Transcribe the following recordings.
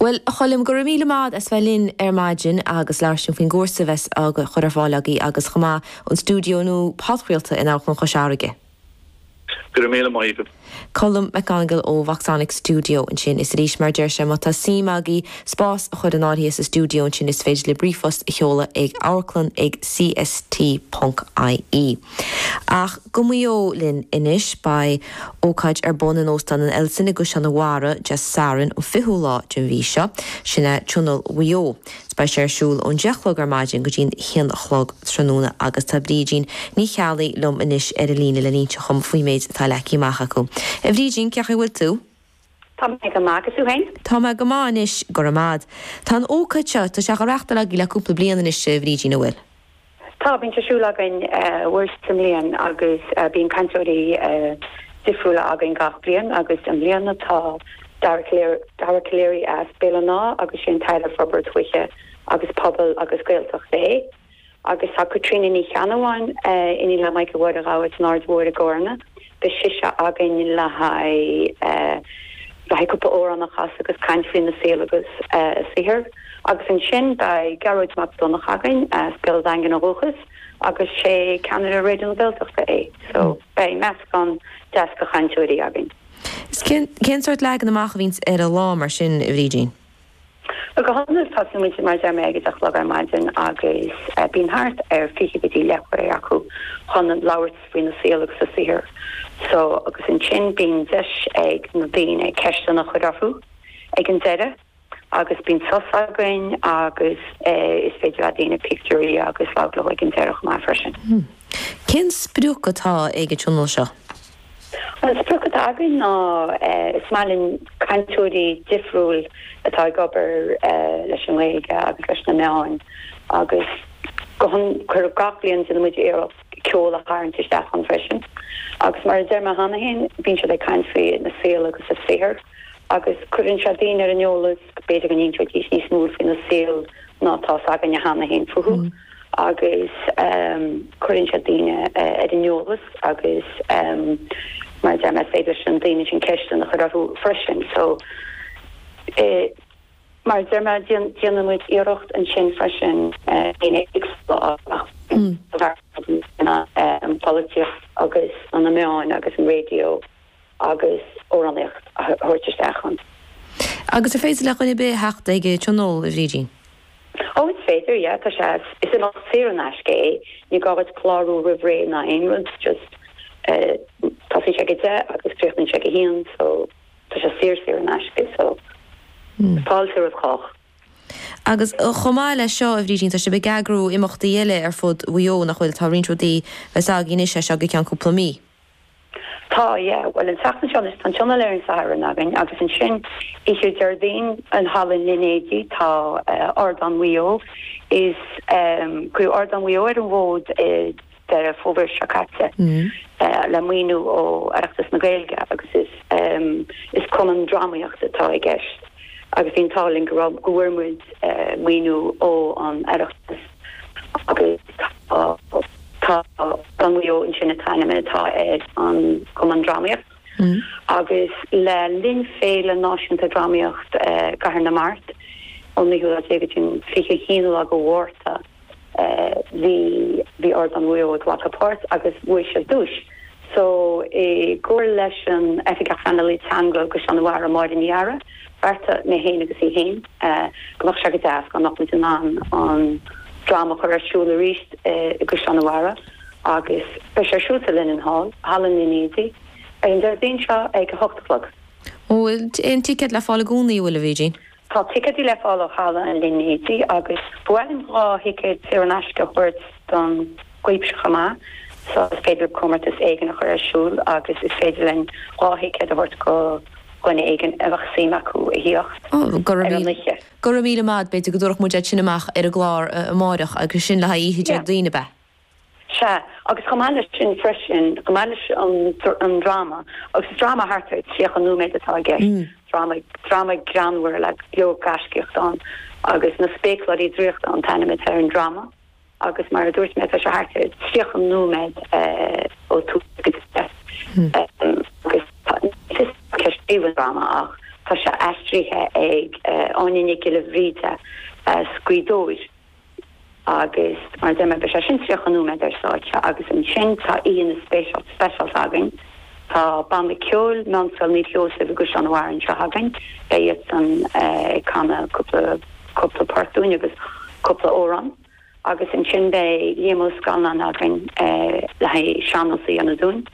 Bhuel, a Choilm, go raibh míle maith 'ad as bheith linn ar maidin agus labhairt linn faoin gcúrsa a bheas á chur ar fáil agaibh agus chomh maith an stiúideo nua podchraolta in Amharclann Chois Fharraige. Go raibh míle maith agat. Colm McGonigle ó Voxonic Studio ansin. Is arís, mar a deir sé, má tá suim agaibh spás a chur in áirithe sa stiúideo ansin is féidir libh ríomhphost a sheoladh ag amharclann ag CST ponc IE. Ach go Maigh Eo linn anois. Beidh ócáid ar bun in Óstán an Ellison i gCaisleán an Bharraigh, Dé Sathairn an 20ú lá den mhí seo, sin é Tionól Mhaigh Eo. Beidh sé ar siúl ón 10 a chlog ar maidin go dtí an 1 a chlog tráthnóna agus tá Brídín Ní Cheallaigh liom anois ar an líne le n-inseacht dhom faoin méid atá leagtha amach acu. A Bhrídín, cén chaoi a bhfuil tú? Tá mé go maith, agus tú féin? Tá mé go maith anois, go raibh maith 'ad. Tá an ócáid seo, tá sé á reachtáil agaibh le cúpla bliain anois, a Bhrídín, a' bhfuil? Tá, bíonn sé ar siúl againn uair sa mbliain agus bíonn cainteoirí difriúla againn gach bliain agus i mbliana tá Dara Calleary, Dara Calleary as Béal an Átha agus sé an tAire Forbartha Tuaithe agus Pobail agus Gaeltachta é. Agus tá Caitríona Ní Cheannabháin, iníon le Michael Mháire Ghabha as an Aird Thoir i gCarna, beidh sise againn le haghaidh cúpla amhrán a chasadh agus caint faoina saol agus a saothar. Agus ansin beidh Gearóid Mac Donncha againn as Béal an Daingin ó dhúchas agus sé ceannaire Raidió na Gaeltachta é. So beidh meascán deas de chainteoirí againn. Cén sórt leagan amach a bhíonns ar an lá mar sin, a Bhrídín? Go hiondúil tosaíonn muid mar a deir mé ag 10 a chlog ar maidin agus bíonn thart ar 20 go dtí leathuair acu chun labhairt faoina saol agus a saothar so agus ansin bíonn deis ag na daoine ceisteanna a chur orthu ag an deireadh agus bíonn sos againn agus is féidir le daoine pictiúirí agus labhairt leo ag an deireadh chomh maith freisin. Cén sprioc atá ag an tionól seo? An sprioc atá againn ná is maith linn cainteoirí difriúil atá ag obair leis an nGaeilge agus leis na meáin agus go hiondúil gach bliain déanann muid iarracht ceol a tharraingt isteach ann freisin agus mar a deir mé cheana féin, bíonn siad ag caint faoina saol agus a saothar agus cuireann sé daoine ar an eolas, b'fhéidir go n-inseoidís níos mó faoina saol ná atá 's againne cheana féin fúthu. agus cuireann sé daoine ar an eolas agus mar a deir mé is féidir leis na daoine sin ceisteanna a chur orthu freisin so mar a deir mé déanann muid iarracht ansin freisin daoine éagsúla a fhreagairt, an pholaitíocht agus na meáin agus an raidió. agus amhránaíocht a thabhairt isteach ann. Agus ar féidir le duine ar bith a theacht ag an tionól, a Bhrídín? Ó, is féidir, yeah, tá sé, is imeacht saor in aisce é, ní gá dhuit clárú roimh ré ná aon rud, just eh, tosaíonn sé ag a deich agus críochnaíonn sé ag a haon so tá sé saor saor in aisce so fáilte roimh chách. Agus chomh maith leis seo a Bhrídín, tá sibh ag eagrú imeachtaí eile ar fud Mhaigh Eo, nach bhfuil? Tá roinnt rudaí bheas againn anois as seo go ceann cúpla mí. Tá, yeah. Bhuel, an tseachtain seo anois, tá an Tionól ar an Satharn againn agus ansin oíche Déardaoin in Halla an Línéadaigh tá Ardán Mhaigh Eo is cuireadh Ardán Mhaigh Eo ar an bhfód i nDeireadh Fómhair seo caite le maoiniú ó Oireachtas na Gaeilge agus is cumann drámaíochta atá i gceist agus bhí an t-ádh linn go raibh, go bhfuair muid maoiniú ó an Oireachtas. Tá Ardán Mhaigh Eo ansin an t-ainm atá ar an gcumann drámaíocht agus le linn Féile Náisiúnta Drámaíocht i gCathair na Mart ón 9ú lá déag go dtí an 21 lá de Mhárta bhí bhí Ardán Mhaigh Eo ag glacadh páirt agus bhuaigh siad duais so i gcomhar leis an Oifigeach Pleanála Teanga Ghnó Mhaigh Eo, Máire Ní Eadhra. bheartaigh mé féin agus í féin, go mbeadh sé go deas dá mbeadh muid in ann an dráma a chur ar siúl arís i gCaisleán a' Bharraigh agus beidh sé ar siúl sa Linenhall, Halla an Línéadaigh, ar an Déardaoin seo ag a hocht a chlog. An bhfuil aon ticéid le fáil i gcónaí, an bhfuil, a Bhrídín? Tá ticéidí le fáil ó Halla an Línéadaigh agus ba mhaith liom dhá thicéad saor in aisce a thabhairt don. cuimsitheach chomh maith so is féidir comórtas éigin a chur ar siúl agus is féidir linn dhá thicéad a thabhairt do dhuine éigin a bheadh suim acu a thíocht ar an oíche. Go raibh míle maith. B'fhéidir go dtabharfadh muid iad sin amach ar an gclár amáireach agus sin le haghaidh oíche Déardaoin, ab ea? Sea, agus chomh maith leis sin freisin, chomh maith leis an dráma, agus is dráma thart ar thríocha nóiméad atá i gceist, dráma, dráma greannmhar le go leor gaiscíocht ann agus Na Spéacláirí Draíochta an t-ainm atá ar an dráma. agus mar a dúirt mé tá sé thart ar 30 nóiméad ó tús go deireadh agus ní fios cé a scríobh an dráma ach tá sé aistrithe ag Áine Nic Giolla Bhríde, scríbhneoir, agus mar a deir mé beidh sé sin 30 nóiméad ar stáitse agus ansin tá aíonna speisialta againn. Tá banna ceoil Meánscoil Naomh Seosamh i gCaisleán an Bharraigh anseo againn. Beidh iadsan ag canadh cúpla cúpla port dúinn agus cúpla amhrán agus ansin beidh Liam Ó Scanláin againn le haghaidh sean-nós a dhéanamh dúinn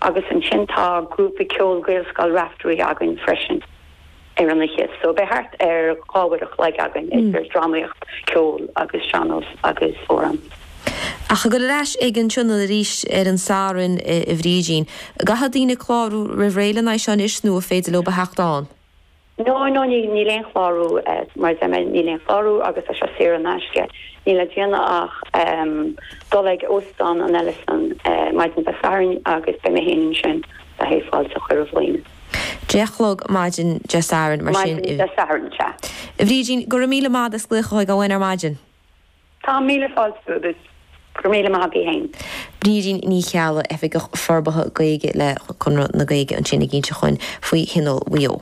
agus ansin tá grúpa ceoil Gaelscoil Raifteirí againn freisin. ar an oíche so beidh thart ar dhá uair a chloig againn idir dramaíocht, ceol agus sean-nós agus amhrán. Ach ag dul ar ais ag an Tionól arís ar an Satharn a Bhrídín. Caithfidh daoine clárú roimh ré le haghaidh seo anois nó an féidir leo a theacht ann? No, no, níl aon chlárú mar deir mé níl aon chlárú agus tá sé saor in aisce. Níl le déanamh ach dul ag Óstán an Ellison maidin Dé Sathairn agus beidh mé féin ansin le haghaidh fáilte a chur roimh dhaoine. Deich a chlog maidin Dé Sathairn mar sin Maidin Dé Sathairn sea, a Bhrídín. Go raibh míle maith agat as glaoch chugainn ar maidin. Tá míle fáilte agat. Go raibh míle maith agat féin. Brídín Ní Cheallaigh, Oifigeach Forbartha Gaeilge le Conradh na Gaeilge ansin ag inseacht dhúinn faoi Thionól Mhaigh Eo.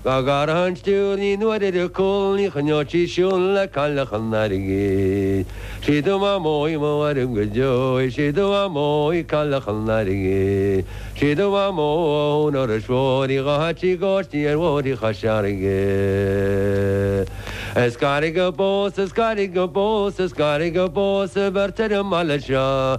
Dá gcuirfeadh an stiúir naoi n-uaire ar a cúl ní choinneodh sí siúl le cailleach an airgid. Sí do mhaimeo í mo mhairg go deo í, sí do mhaimeo í cailleach an airgid. Sí do mhaimeo í ó thóin Iorrais Mhóir í, a chaithfeadh sí cóistí ar bhóithrí Chois Fharraige. Is gairid go bpósfaidh, is gairid go bpósfaidh, is gairid go bpósfaidh beirt ar an mbaile seo.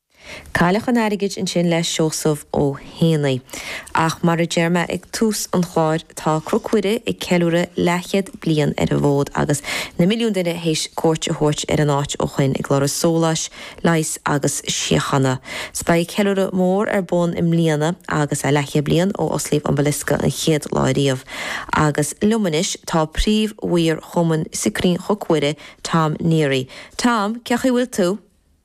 Cailleach an Airgid ansin le Seosamh Ó hÉanaí. Ach mar a deir mé ag tús an chláir, tá Cnoc Mhuire ag ceiliúradh leathchéad bliain ar an bhfód agus na milliúin duine théis cuairt a thabhairt ar an áit ó shoin ag lorg sóláis, leighis agus síochána. So beidh ceiliúradh mór ar bun i mbliana agus é leathchéad bliain ó osclaíodh an basilica an chéad lá ariamh. Agus liom anois tá príomh-mhaor Chumann Scrín Chnoc Mhuire, Tom Neary. Tom, cé chaoi bhfuil tú?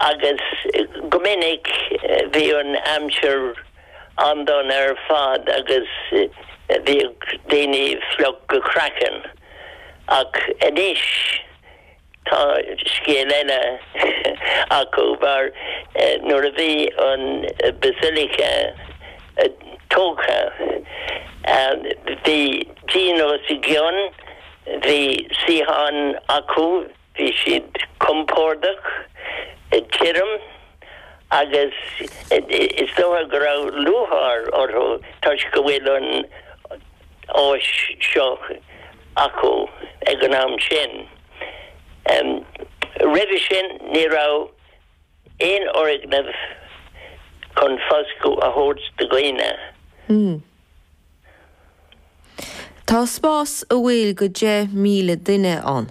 agus go minic bhí an aimsir an-dona ar fad agus bhíodh daoine fliuch go craiceann ach anois tá scéal eile acu mar nuair a bhí an basilica tógtha bhí díon os a gcionn, bhí suíocháin acu. Bhí siad compordach, tirim agus is dócha go raibh lúcháir orthu toisc go bhfuil an áis seo acu ag an am sin. Roimhe sin ní raibh aon fhoirgneamh chun foscadh a thabhairt do dhaoine. Tá spás an bhfuil do 10,000 duine ann.